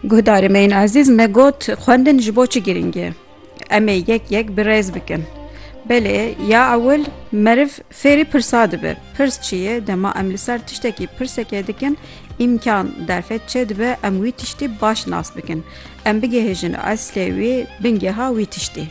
Guhdarê me yên ezîz me got xwendin ji bo çi girîng e. Em ê yek yek bi rêz bikin. Belê ya ewil meriv fêrî pirsa dibe. Pirs çi ye dema em li ser tiştekî pirseke dikin îmkan derfet çê dibe em wî tiştî baş nas bikin. Em bigihêjin eslê wî bingeha wî tiştî.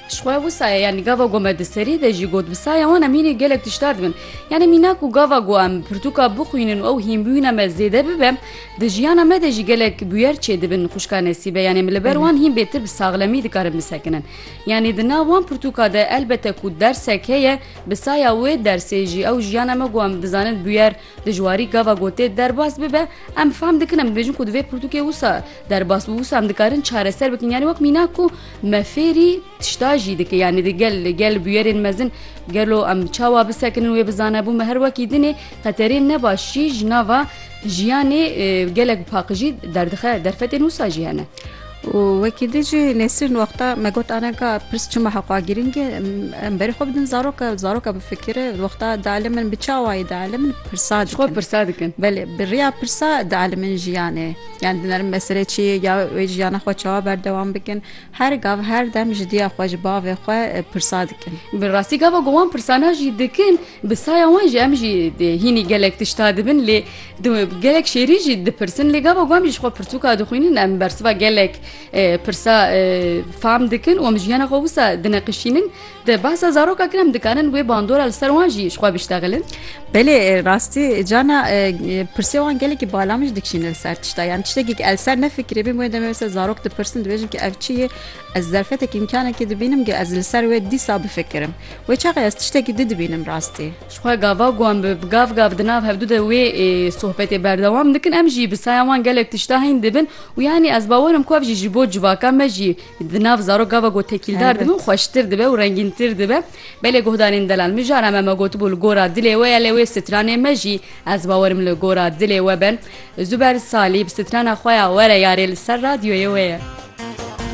Ji xwe wisa ye yanî gava ku me di serî de jî got bi saya wan em hînî gelek tiştar dibin. Yanî mîna ku gava ku em pirtûka bixwînin û ew hînbûyîna me zêde bibe di jiyana me de jî gelek bûyer çêdibin xwişka Nesîbe yanî em li ber wan hîn bêtir bi saxlemî dikarin bisekinin. Yanî di nav wan pirtûka de elbete ku dersek heye bi saya wê dersê jî ew jiyana me ku em dizanin bûyer Di ji warî gava gotê derbas bibe em fam dikin em dibêjin ku divê pirtûkê wisa derbas û wisa em dikarin çareser bikin yanî wek mînak ku me fêrî tişta jî dike yanî di gel li gel bûyerên mezin gelo em çawa bisekinin wê bizanebû me her wekî dinê qeterên ne baş jî ji nava jiyanê gelek paqijî derdixe derfetên wisa jî hene. Û wekî din jî Nesrîn wexta me got anan ka pirs çima heqûa girîng e em berê xwe bidin zaroka zaroka bifikire wexta dielimin bi çawayî dielimin pirsa dikin. Ji xwe pirsa dikin. Belê bi riya pirsa dielimin jiyanê yan dinerin meselê çi ye ya wê jiyana xwe çawa berdewam bikin her gav her dem ji diya xwe ji bavê xwe pirsa dikin. Bi rastî gava ku wan pirsana jî dikin bi saya wan jî em jî hînî gelek tişta dibin lê Di gelek şêrî jî dipirsin lê gava ku em jî ji xwe pirtûka dixwînin em bersiva gelek pirsa fam dikin û em jiyana xwe wisa dineqişînin di behsa zaroka kir em dikarin wê bandora li ser wan jî ji xwe biştexilin Belê rastî cana pirsê wan gelekî bala min jî dikişînin ser tişta yan tiştekî el ser nefikirê bê wê demê ser zarok dipirsin dibêjin ki ev çi yê ez zerfetekî îmkanekî dibînim ki ez li ser wê dîsa bifikirim wê çaxê ez tiştekî di dibînim rastî Ji xwe gava ku em bi gav gav di nav hevdu de wê sohbetê berdewam dikin em jî bi saya wan gelek tişta hîn dibin û yanî ez bawer im ku ev jî ji bo civaka me jî di nav zarok gava ku tekîldar dibin xweştir dibe û rengîntir dibe. Belê guhdarên delal mijara me me gotibû li gora dilê we ye lê wê stranê me jî ez bawer im li gora dilê we ben. Zuber Salî bi strana xwe ya Were yarê li ser radyoyê we ye.